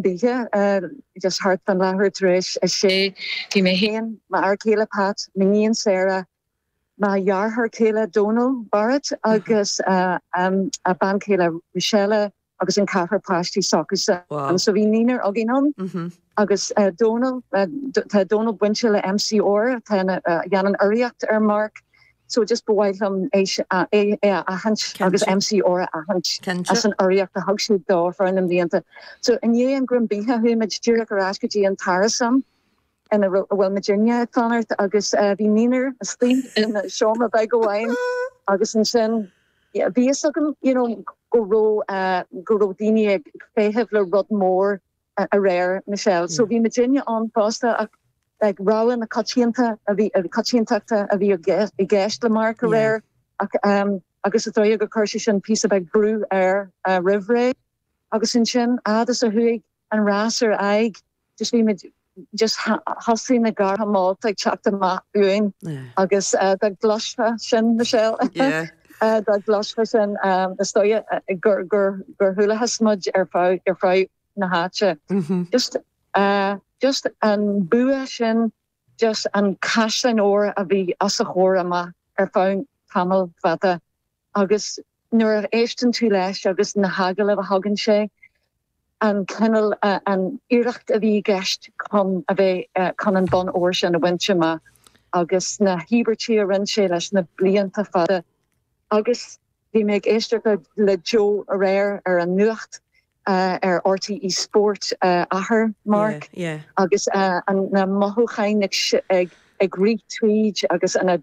bídh just thart fán leathuair tar éis a sé Bhí mé féin, m'fhear céile Pat, m'iníon Sarah, mo dheartháir céile Dónal, Barrett, agus a bean chéile Rochelle agus an ceathrar páistí s'acusan. Wow. So bhí naonúr againn ann. Mhm. Agus Dónal, tá Dónal bainte le MCR, tá, a dhéanann urraíocht ar Mark. so just ba mhaith liom é a aithint agus MCR a aithint as an urraíocht a thug siad dó thar na mblianta. So i ndiaidh an greim bídh chuaigh muid díreach ar ais go dtí an t-árasán ina raibh a bhfuil muidinne ag fanacht agus bhí naonúr istigh in seomra beag amháin agus ansin bhí fhios agam you know go raibh go raibh daoine ag feitheamh le rud mór aréir, Michelle. So bhí muidinne ann fosta ach like rogha na coitianta a bhí, na coitiantachta a bhí i gceist le Mark aréir ach ehm agus is dóigh gur chuir sé sin píosa beag brú air roimh ré. Agus ansin fhad is a chuaigh an rás ar aghaidh just bhí muid, just thosaigh na gartha molta ag teacht amach uainn agus eh, dá gcloisfeá sin, Michelle. Yeah. dá gcloisfeá sin, is dóigh gur chualathas muid ar fud na háite. Just, just an bua sin, just an caisleán óir a bhí os a chomhair amach ar feadh tamall fada agus nuair a éisteann tú leis agus na hagallaimh a thugann sé, an cineál, an iarracht a bhí i gceist chun a bheith, chun an bonn óir sin a bhaint amach agus na híobairtí a rinne sé leis na blianta fada agus bhí mé ag éisteacht le Joe aréir ar an nuacht ar RTÉ Sport, athair Mark, agus na mothúcháin ag rith tríd agus an.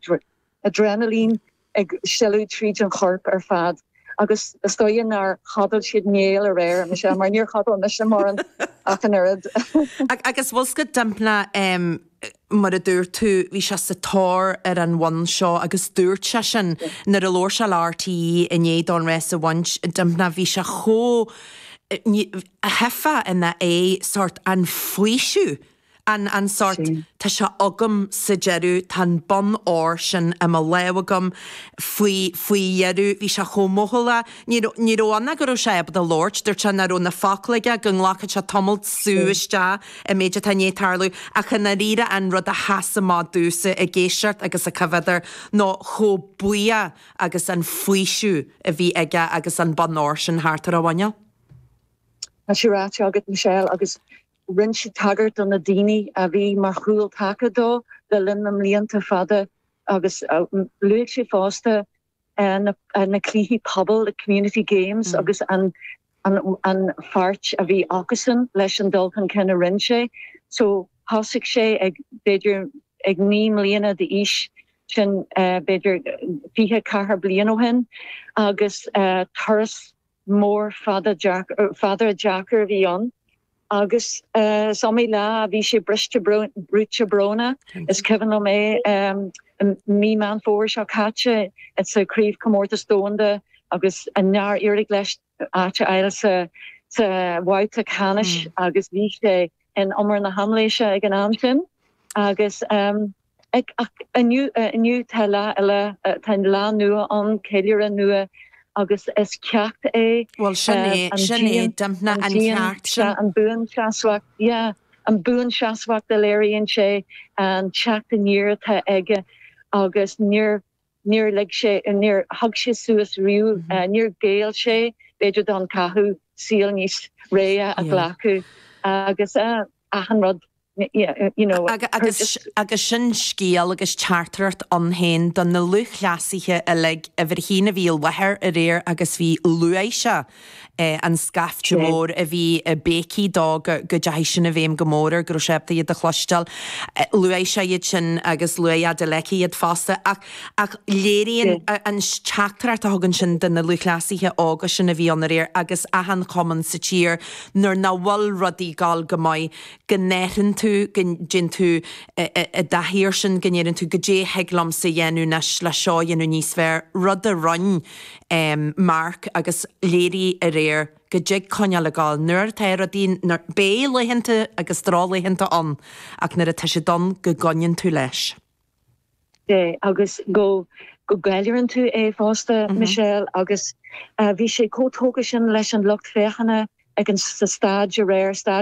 aidréanailín ag sileadh tríd an chorp ar fad agus is dóigh nár chodail siad néal aréir, mar níor chodail mise mórán ach an oiread. Agus bhfuil 's agat Dympna em mar a dúirt tú bhí sé sa tóir ar an bhonn seo agus dúirt sé sin nuair a labhair sé le RTÉ i ndiaidh dó an rás a bhaint Dympna bhí sé chomh tchífeá ina aghaidh sórt an faoiseamh. An an sórt 'tá sé agam' sa deireadh, tá an bonn óir sin i mo lámh agam faoi faoi dheireadh, bhí sé chomh mothúchánach. Ní raibh ní raibh ann ach go raibh sé ábalta labhairt, dúirt sé nach raibh na focla aige, go nglacfadh sé tamalt sú isteach an méid atá i ndiaidh tarlú. Ach i ndáiríre an rud a sheas amach domhsa ag éisteacht agus ag coimhéad air nó chomh buíoch agus an faoiseamh a bhí aige agus an bonn óir sin thart ar a mhuineál. Tá sé ráite agat Michelle agus. Rinne sé tagairt do na daoine a bhí mar chúl taca dó le linn na mblianta fada agus luaigh sé fosta na cluichí pobail, the community games, agus an pháirt a bhí acusan leis an dul chun cinn a rinne sé. So thosaigh sé ag, b'fhéidir, ag naoi mbliana d'aois, sin b'fhéidir fiche ceathair bliain ó shin, agus turas mór fada deacair a bhí ann agus is iomaí lá a bhí sé briste brúite brónach. Is cuimhin liom é i mí Meán Fómhair seo caite sa chraobhchomórtas domhanda agus nár éirigh leis áit a fháil sa bhabhta ceannais agus bhí sé in umar na haimléise ag an am sin agus Ach inniu tá lá eile, tá lá nua ann, ceiliúradh nua agus is ceacht é an buanseasmhacht, yeah, an buanseasmhacht a léiríonn sé, an teacht aniar atá aige agus níor níor lig sé, níor thug sé suas riamh, níor ghéill sé, b'fhéidir, don chathú, saol níos réidhe a ghlacadh agus achan rud, you know. Agus sin scéal agus teachtaireacht ann féin do na lúthchleasaithe uilig. Uimhir a haon a bhí i láthair aréir agus bhí luaigh sé. an scaifte mór a bhí ag béicigh dó, go dteachaigh sin i bhfeidhm go mór air, go raibh sé ábalta iad a chloisteáil. Luaigh sé iad sin agus luaigh Adeleke iad fosta ach ach léiríonn an teachtaireacht a thugann sin do na lúthchleasaithe óga sin a bhí ann aréir agus achan chumann sa tír nuair nach bhfuil rudaí ag gabháil go maith go n-athraíonn tú, go dtéann tú i dtaithí air sin, go ndeireann tú 'goidé a thig liomsa a dhéanamh anois le seo a dhéanamh níos fearr', rud a rinne um Mark agus léirigh aréir go dtig coinneáil ag gabháil nuair atá rudaí nuair, beidh laethanta agus drochlaethanta ann ach nuair atá siad ann go gcoinníonn tú leis. de agus go go gceiliúrann tú é fosta Michelle agus bhí sé chomh tógtha sin leis an lucht féachana ag an sa staid aréir, staid